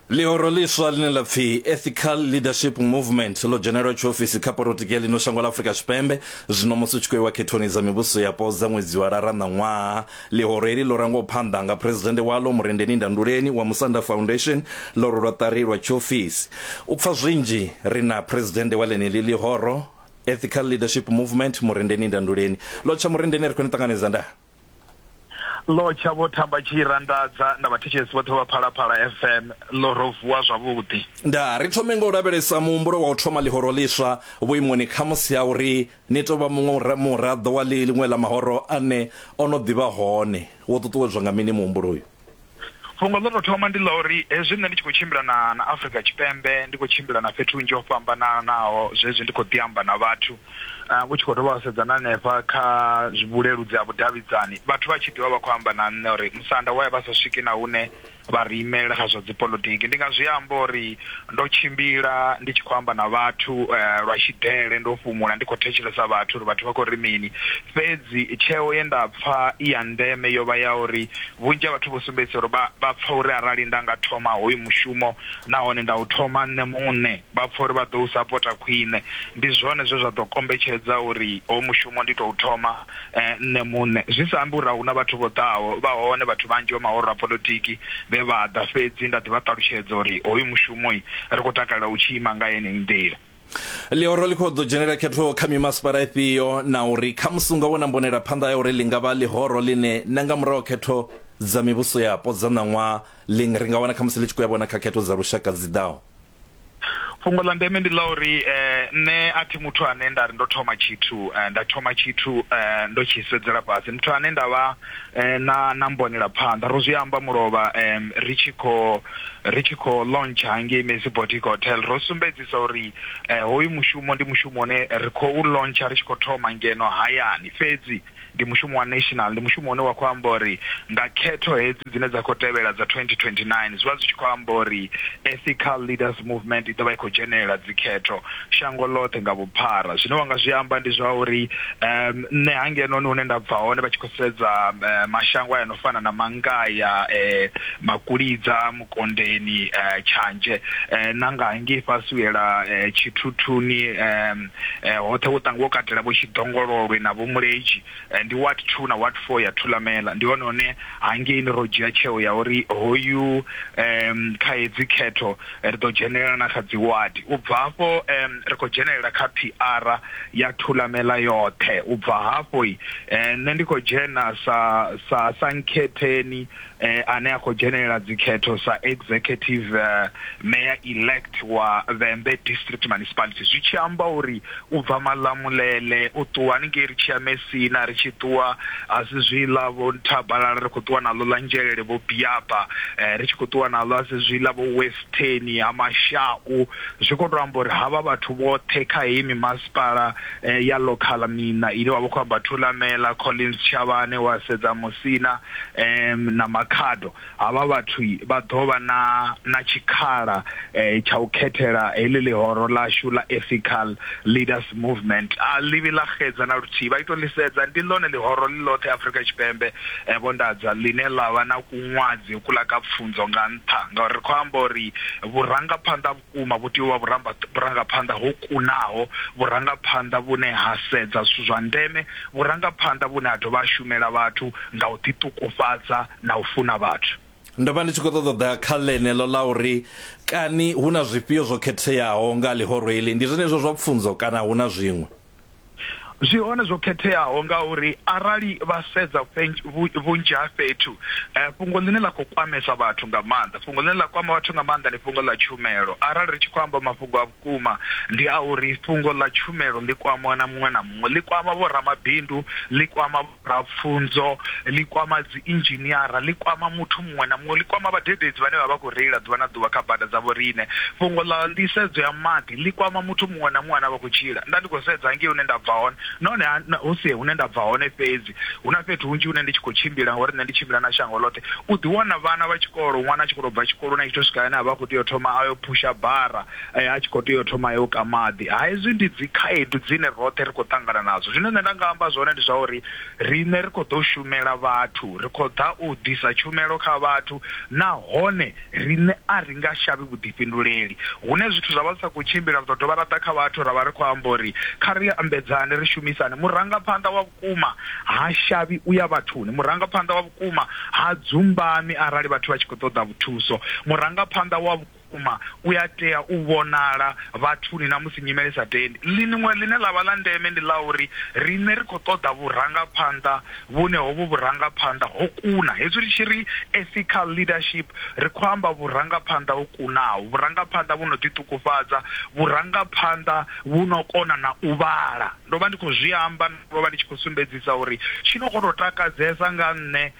ḽihoro ḽiswa ḽine ḽa pfi ethical leadership movement ḽo dzhenelwa tshiofisi kha porotiki ya ḽino shango ḽa afurika tshipembe zwino musi u tshi khou iwa khethoni dza mivhuso yapo dza ṅwedzi wa lara ṋaṅwaha ḽihoro heḽi ḽo rangwaho phanḓa nga phuresidennde waḽo murendeni ndanduleni wa musanda foundation ḽo ri lwa ṱari lwa tshiofisi u pfa zwinzhi ri na phuresidennde wa ḽeneḽi ḽihoro ethical leadership movement murendeni ndanduleni ḽo tsha murendeni ri khou ni ṱanganedza ndaa Lotsha vho thamba tshi randadza na vhathetshelesi vhoṱhe vha Phalaphala FM lo ro vuwa zwavhuḓi. Ndaa, ri thome nga u lavhelesa muhumbulo wa u thoma ḽihoro ḽiswa vhuimoni khamusi ha uri ni tou vha muṅwe muraḓo wa ḽiṅwe ḽa mahoro ane o no ḓi vha hone. Wo ṱuṱuwedzwa nga mini muhumbulo uyu? fhungo ḽo tou thoma ndi ḽa uri hezwi nṋe ndi tshi khou tshimbila na na Afrika Tshipembe ndi khou tshimbila na fhethu hunzhi ho fhambananaho zwezwi ndi khou ḓi amba na vhathu vhu tshi khou dovha wa sedza na hanefha kha vhuleludzi ha vhudavhidzani vhathu vha tshi ḓivha vha khou amba na nṋe uri musanda waye vha sa swiki na hune vha ri imela kha zwa dzipolotiki ndi nga zwi amba uri Ndo tshimbila ndi tshi khou amba na vhathu lwa tshidele, ndo fhumula ndi khou thetshelesa vhathu uri vhathu vha khou ri mini. Fhedzi tsheo ye nda pfa i ya ndeme yo vha ya uri vhunzhi ha vhathu vho sumbedzisa uri vha vha pfa uri arali nda nga thoma hoyu mushumo nahone nda u thoma nṋe muṋe, vha pfa uri vha ḓo u sapota khwine. Ndi zwone zwe zwa ḓo kombetshedza uri hoyu mushumo ndi tou thoma. eh, nṋe muṋe zwi sa ambi uri a huna vhathu vho ḓaho vha hone vhathu vhanzhi vha mahoro a polotiki vhe vha ḓa fhedzi nda ḓi vha ṱalutshedza uri hoyu mushumo ri khou takalela u tshi ima nga yeneyi nḓila ḽihoro ḽi khou ḓo dzhenela khetho kha mimasipala ifhio na uri kha musi unga vhona mbonela phanḓa ya uri ḽi nga vha ḽihoro ḽine na nga murahu khetho dza mivhuso yapo dza ṋaṅwaha ḽi ri nga wana kha musi ḽi tshi khou ya vhona kha khetho dza lushaka dzi ḓaho fhungo ḽa ndeme ndi ḽa uri eh, nṋe a thi muthu ane nda ri ndo thoma tshithu eh, nda thoma tshithu eh, ndo tshi sedzela fhasi muthu ane nda vha eh, na na mbonela phanḓa ro zwi amba mulovha eh, ri tshi kho ri tshi kho launch hangei Messi Boutique Hotel ro sumbedzisa uri eh, hoyu mushumo ndi mushumo une ri khou launcha ri tshi khou thoma ngeno hayani fhedzi ndi mushumo wa national, ndi mushumo une wa khou amba uri nga khetho hedzi dzine dza khou tevhela dza 2029 zwi vha zwi tshi khou amba uri Ethical Leaders Movement i ḓo vha i khou dzhenelela dzikhetho shango ḽoṱhe nga vhuphara. Zwine wa nga zwi amba ndi zwa uri um nṋe hangenoni hune nda bva hone vha tshi khou sedza mashango a no fana na Mangaia, um Makulidza, Vhukondeni, Tshanje, na nga hangei fhasi u yela Tshithuthuni, hoṱhe wo tangiwa u katela vho Tshidongololwe na vho Muledzi. Ndi Ward Two na Ward Four ya Thulamela. Ndi hone hune hangeini ro dzhia tsheo ya uri hoyu kha hedzi khetho ri ḓo dzhenelela na kha dzi ward. U bva hafho ri khou dzhenelela kha phiara ya Thulamela yoṱhe. U bva hafho nṋe ndi khou dzhena sa sa sa nkhetheni eh, ane a khou dzhenelela dzikhetho sa executive uh, mayor elect wa vhembe district municipality zwi tshi amba uri u bva malamulele u ṱuwa haningei ri tshiya mesina ri tshi ṱuwa asi zwiḽa vho nthabalala ri khou ṱuwa naḽo ḽa nzhelele vho biaba eh, ri tshi khou ṱuwa naḽo asi zwiḽa vho westeni ha mashau zwi khou tou amba uri havha vhathu vhoṱhe kha heyi mimasipala eh, ya local mina ine wa vha khou amba thulamela collins tshavhane wa sedza musina um na makhado havha vhathu vha ḓo vha na na tshikhala um tsha u khethela heḽi ḽihoro ḽashu ḽa ethical leaders movement a ḽivhi ḽa xedza na luthihi vha ito ḽisedza ndi ḽone ḽihoro ḽi ḽoṱhe afrika tshipembe um vho ndadza ḽine ḽa vha na kuṅwadzi kuḽa ka pfunzo nga nṱha ngauri ri khou amba uri vhurangaphanḓa Vhukuma, vhu tea u vha vhuramba, vhurangaphanḓa ho kunaho, vhurangaphanḓa vhune ha sedza zwithu zwa ndeme, vhurangaphanḓa vhune ha dovha ha shumela vhathu nga u ḓiṱukufhadza na u funa vhathu. Ndo vha ndi tshi khou ṱoḓa u ḓa kha ḽeneḽo ḽa uri kani hu na zwifhio zwo khetheaho nga ha ḽihoro heḽi. Ndi zwenezwo zwa pfunzo kana hu na zwiṅwe? Zwi hone zwo khetheaho ngauri arali vha sedza vhunzhi ha fhethu fhungo ḽine ḽa khou kwamesa vhathu nga maanḓa, fhungo ḽine ḽa kwama vhathu nga maanḓa ndi fhungo ḽa tshumelo. Arali ri tshi khou amba mafhungo a vhukuma ndi a uri fhungo ḽa tshumelo ḽi kwama na muṅwe na muṅwe, ḽi kwama vho ramabindu, ḽi kwama. ra pfunzo ḽi kwama dzi inzhiniara ḽi kwama muthu muṅwe na muṅwe ḽi kwama vhadededzi vhane vha vha khou reila ḓuvha na ḓuvha kha bada dza vhoriṋe fhungo ḽa nḓisedzo ya maḓi ḽi kwama muthu muṅwe na muṅwe ane vha khou tshila nda ndi khou sedza ngei hune nda bva hone nahone hu si hune nda bva hone fhedzi hu na fhethu hunzhi hune ndi tshi khou tshimbila ngauri nṋe ndi tshimbila na shango ḽoṱhe u ḓi wana vhana vha tshikolo ṅwana a tshi khou tou bva tshikoloni a tshi to swika ane a vha a khou tea u thoma a yo phusha bara eh, a tshi khou tea u thoma yo ka maḓi ha hezwi ndi dzi khaedu dzine roṱhe ri khou ṱangana nadzo zwine nṋe nda nga amba zwone ndi zwa uri riṋe ri khou ḓo shumela vhathu ri khou ḓa u ḓisa tshumelo kha vhathu nahone riṋe a ri nga shavhi vhuḓifhinduleli hune zwithu zwa vha zwi sa khou tshimbila ri ḓo dovha ra ḓa kha vhathu ra vha ri khou amba uri kha ri ambedzane ri shumisane murangaphanḓa wa vhukuma ha shavhi u ya vhathuni murangaphanḓa wa vhukuma ha dzumbami arali vhathu vha tshi khou ṱoḓa vhuthuso murangaphanḓa wa Vhukuma, u ya tea u vhonala vhathuni na musi nyimele i sa tendi. Ḽiṅwe ḽine ḽa vha ḽa ndeme ndi ḽa uri riṋe ri khou ṱoḓa vhurangaphanḓa vhune hovhu vhurangaphanḓa ho kuna. Hezwi ri tshi ri ethical leadership, ri khou amba vhurangaphanḓa ho kunaho, vhurangaphanḓa vhu no ḓiṱukufhadza, vhurangaphanḓa vhu no kona na u vhala. Ndo vha ndi khou zwi amba, ndo vha ndi tshi khou sumbedzisa uri tshi no khou tou takadzesa nga nṋe,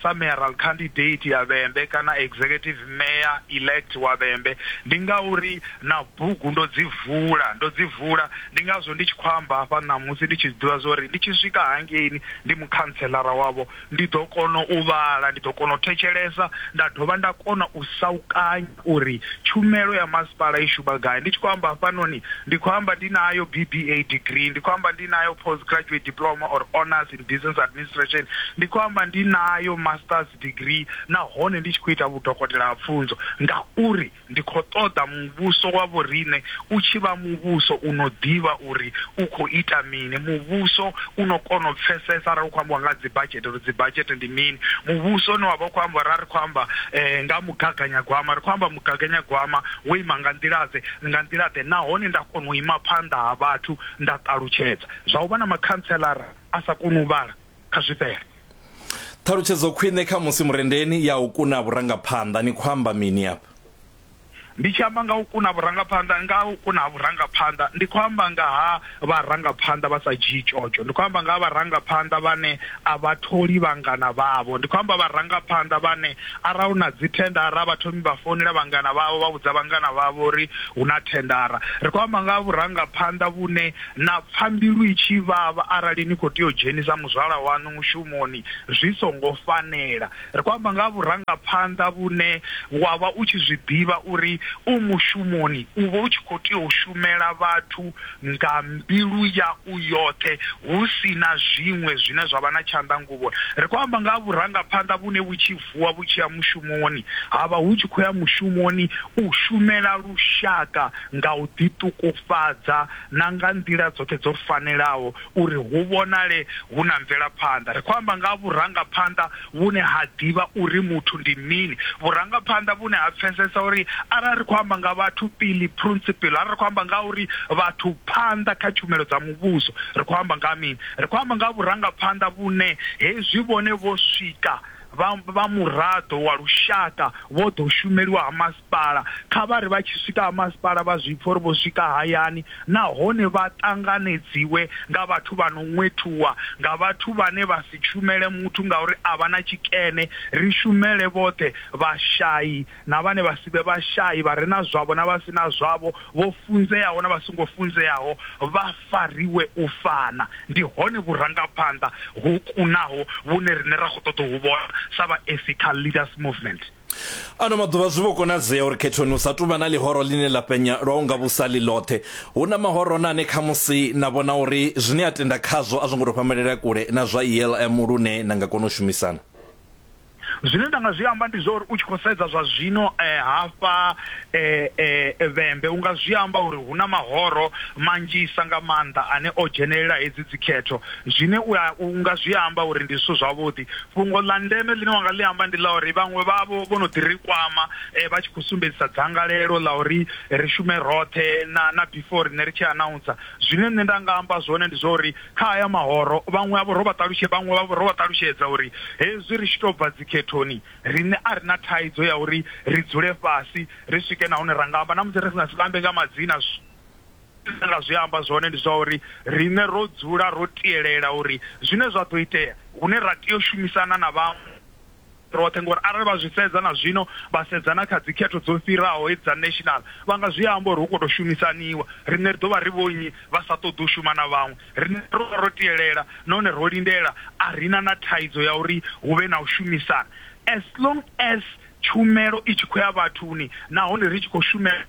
sa Mayoral Candidate ya Vhembe kana Executive Mayor Elect wa Vhembe ndi ngauri na bugu ndo dzi vula ndo dzi vula ndi ngazwo ndi tshi khou amba hafha ṋamusi ndi tshi ḓivha zwori ndi tshi swika hangeini ndi mukhantshelara wavho ndi ḓo kona u vhala ndi ḓo kona u thetshelesa nda dovha nda kona u saukanya uri tshumelo ya masipala i shuma gai. Ndi tshi khou amba hafhanoni, ndi khou amba ndi nayo BBA degree, ndi khou amba ndi nayo Post Graduate Diploma or Honours in Business Administration, ndi khou amba ndi nayo Masters degree nahone ndi tshi khou ita vhudokotela ha pfunzo ngauri ndi khou ṱoḓa muvhuso wa vhoriṋe u tshi vha muvhuso u no ḓivha uri u khou ita mini, muvhuso u no kona u pfesesa arali hu khou ambiwa nga ha dzibadzhete uri dzibadzhete ndi mini, muvhuso une wa vha u khou amba uri a ri khou amba nga. Mugaganyagwama, ri khou amba mugaganyagwama wo ima nga nḓila-ḓe, nga nḓila-ḓe, nahone nda kona u ima phanḓa ha vhathu nda ṱalutshedza zwa u vha na makhantselara a sa koni u vhala kha zwifhela. Ṱhalutshedzo khwine khamusi murendeni ya u kuna vhurangaphanḓa. Ni khou amba mini afha? Ndi tshi amba nga u kuna vhurangaphanḓa, nga u kuna ha vhurangaphanḓa ndi khou amba nga ha. vharangaphanḓa vha sa dzhii tshotsho. Ndi khou amba nga ha vharangaphanḓa vhane a vha tholi vhangana vhavho. Ndi khou amba vharangaphanḓa vhane arali hu na dzi thendara a vha thomi vha founela vhangana vhavho vha vhudza vhangana vhavho uri hu na thendara. Ri khou amba nga ha vhurangaphanḓa vhune na pfa mbilu i tshi vhavha arali ni khou tea u dzhenisa muzwala waṋu mushumoni zwi songo fanela. Ri khou amba nga ha vhurangaphanḓa vhune wa vha u tshi zwi ḓivha uri u mushumoni, u vha u tshi khou tea u shumela vhathu nga mbilu yau yoṱhe hu si na zwiṅwe zwine zwa vha na tshanḓa nguvhoni. Ri khou amba nga ha vhurangaphanḓa vhune vhu tshi vuwa vhu tshi ya mushumoni, ha vha hu tshi khou ya mushumoni u shumela lushaka nga u ḓiṱukufhadza na nga nḓila dzoṱhe dzo fanelaho uri hu vhonale hu na mvelaphanḓa. Ri khou amba nga ha vhurangaphanḓa vhune ha ḓivha uri muthu ndi mini, vhurangaphanḓa vhune ha pfesesa uri arali ri khou amba nga vhathu pili, principle, arali ri khou amba nga ha uri vhathu phanḓa kha tshumelo dza muvhuso, ri khou amba nga ha mini? Ri khou amba nga ha vhurangaphanḓa vhune hezwi vhone vho swika Vha vha muraḓo wa lushaka vho ḓo shumeliwa ha masipala kha vha ri vha tshi swika ha masipala vha zwi pfa uri vho swika hayani nahone vha ṱanganedziwe nga vhathu vha no ṅwethuwa nga vhathu vhane vha si tshumele muthu ngauri a vha na tshikene, ri shumele vhoṱhe vhashai. na vhane vha si vhe vhashai, vha re na zwavho na vha si na zwavho, vho funzeaho na vha songo funzeaho, vha fariwe u fana. Ndi hone vhurangaphanḓa ho kunaho vhune riṋe ra khou ṱoḓa u vhu vhona sa vha Ethical Leaders Movement. Ano maḓuvha zwi vho konadzea uri khethoni hu sa tou vha na ḽihoro ḽine ḽa penya lwa u nga vhusa ḽi ḽoṱhe. Hu na mahoro na ane khamusi na vhona uri zwine a tenda khazwo a zwo ngo tou fhamalela kule na zwa ELM lune na nga kona u shumisana. Zwine nda nga zwi amba ndi zwa uri u tshi khou sedza zwa zwino hafha Vhembe u nga zwi amba uri hu na mahoro manzhisa nga maanḓa ane o dzhenelela hedzi dzikhetho zwine u nga zwi amba uri ndi zwithu zwavhuḓi. Fhungo ḽa ndeme ḽine wa nga ḽi amba ndi ḽa uri vhaṅwe vhavho vho no ḓi ri kwama vha tshi khou sumbedzisa dzangalelo ḽa uri ri shume roṱhe na na before riṋe ri tshi anaunsa. Zwine nṋe nda nga amba zwone ndi zwa uri Kha aya mahoro, vhaṅwe havho ro vha ṱalutshedza, vhaṅwe vhavho ro vha ṱalutshedza uri hezwi ri tshi tou bva dzikhethoni, riṋe a ri na thaidzo ya uri ri dzule fhasi ri swike na hune ra nga amba, na musi ri nga si vha ambe nga madzina. Zwine nda nga zwi amba zwone ndi zwa uri riṋe ro dzula ro tielela uri zwine zwa ḓo itea, hune ra tea u shumisana na vhaṅwe, roṱhe ngori arali vha zwi sedza na zwino vha sedza na kha dzikhetho dzo fhiraho hedzi dza national vha nga zwi amba uri hu khou tou shumisaniwa riṋe ri ḓo vha ri vho nnyi vha sa ṱoḓi u shuma na vhaṅwe riṋe ro vha ro tielela nahone ro lindela a ri na na thaidzo ya uri hu vhe na u shumisana as long as tshumelo i tshi khou ya vhathuni nahone ri tshi khou shumela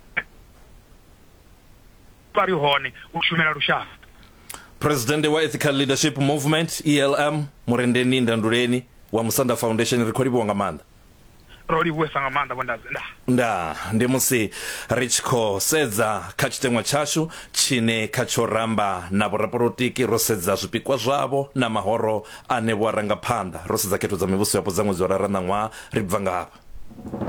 vha ri hone u shumela lushaka. Presidennde wa Ethical Leadership Movement, ELM, Murendeni Ndanduleni wa Musanda Foundation, ri khou livhuwa nga maanḓa. ro livhuwesa nga maanḓa vhondadze nda nda ndi musi ri tshi khou sedza kha tshiteṅwa tshashu tshine kha tsho ramba na vhorapolotiki ro sedza zwipikwa zwavho na mahoro ane vho aranga phanḓa ro sedza khetho dza mivhuso yapo dza ṅwedzi wa rara ṋaṅwaha ri bva nga hafha